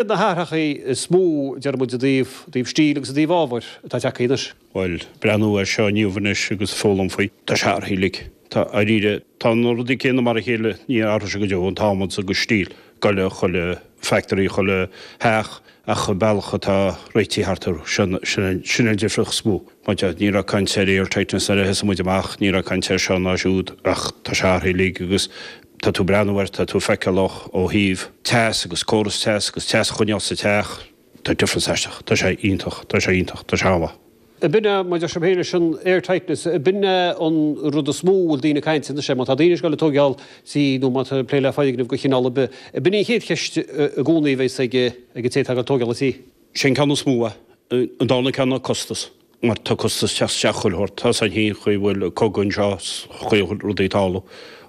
Ar na hathruithe is mó déarfaidh muid i dtaobh stíl agus i dtaobh ábhair atá tagtha anois. Bhuel, breathnú air seo inniu anois agus foghlaim faoi. Tá sé athraithe uilig. Tá, dháiríre. Tá na rudaí céanna mar a chéile, ní athróidh sé go deo, an t-adhmad agus an steel, chuile, chuile factory, chuile theach, ach an bealach atá réitithe thart orthu, sin, sin an difríocht is mó. Mar tá, ní raibh caint ar airtightness nuair a thosaigh muid amach, ní raibh caint air seo ná siúd ach tá sé athraithe uilig agus Tá tú breathnú ar, tá tú ag feiceáil ó thaobh teas agus córas teas agus teas a choinneáil sa teach. Tá difference aisteach. Tá sé iontach. Tá sé iontach. Tá sé amhlaidh. Ab in é, mar deir sibh féin leis an air tightness, ab in é an rud is mó a bhfuil daoine ag caint anois air, má tá daoine ag goil ag tóigeáil tí nó má tá plé le foirgnimh de chineál ar bith, ab in é an chéad cheist i gcónaí a bheidh ag an té atá ag tóigeáil tí. Sin é an ceann is mó. An dárna ceann ná costas. mar tá costas ag teacht isteach i chuile shórt, tá 's againn féin an chaoi a bhfuil cogadh anseo, chuile rudaí atá ann,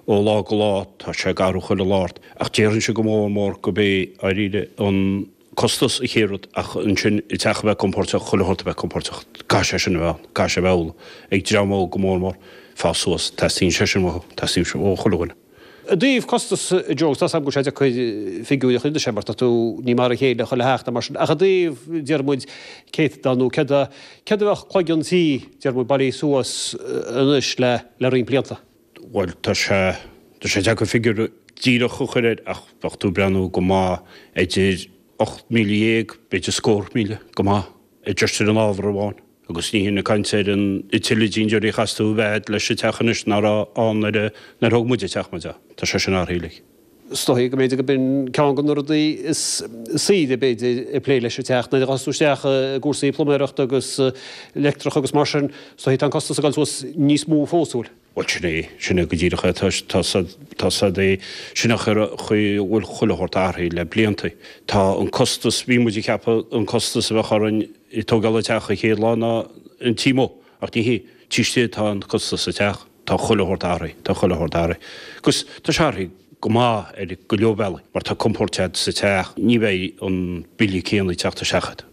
ó lá go lá tá sé ag athrú chuile lá ort, ach déarfainnse go mór mór gurb é, dháiríre, an costas an chéad rud, ach ansin an teach a bheith compóirteach, chuile shórt a bheith compóirteach, caithfidh sé sin a bheith ann, caithfidh sé a bheith amhlaidh, ag dream óg go mór mór, ag fás suas, teastaíonn sé sin uathu, teastaíonn sé ó chuile dhuine. I dtaobh costasaí ar ndóigh, tá 's agam go bhfuil sé deacair figiúirí a chur anois air mar tá tú ní mar a chéile chuile theach ná mar sin ach i dtaobh, déarfaidh muid, céatadán nó céard a, céard a bheadh cloigeann tí, déarfaidh muid, bailithe suas anois le, le roinnt blianta. Bhuel tá sé, tá sé deacair figiúir díreach a chur air ach bheadh tú ag breathnú go maith idir ocht míle dhéag, b'fhéidir scór míle, go maith, de dhifear in ábhar amháin. Agus ní hin ag caint ar an tuilleadh innealtóirí a chaithfeas tú a bheith agat leis an teach anois nach raibh ann nuair a thóg muide teach muid ann. Tá sé sin athraithe uilig. Is dóichí go mb'fhéidir go b'in ceann de na rudaí is saoire, b'fhéidir, ag plé leis an teach, nuair a ghabhfas tú isteach i gcúrsaí pluiméarachta agus leictreachais agus mar sin, is dóichí tá an costas ag dul suas níos mó fós, an bhfuil? Bhuel, sin é, sin é go díreach é. Tá, tá 's agat, tá 's agat féin an chaoi a bhfuil chuile shórt athraithe le blianta. Tá an costas, bhí muid ag ceapadh an costas a bheadh orainn ag tógáil an teach an chéad lá ná an taobh amuigh, ach ní hé, taobh istigh atá an costas sa teach. Tá chuile shórt athraithe, tá chuile shórt athraithe. Agus tá sé athraithe go maith ar go leor bealaí mar tá compord sa teach, ní bheidh an bille céanna ag teacht isteach agat.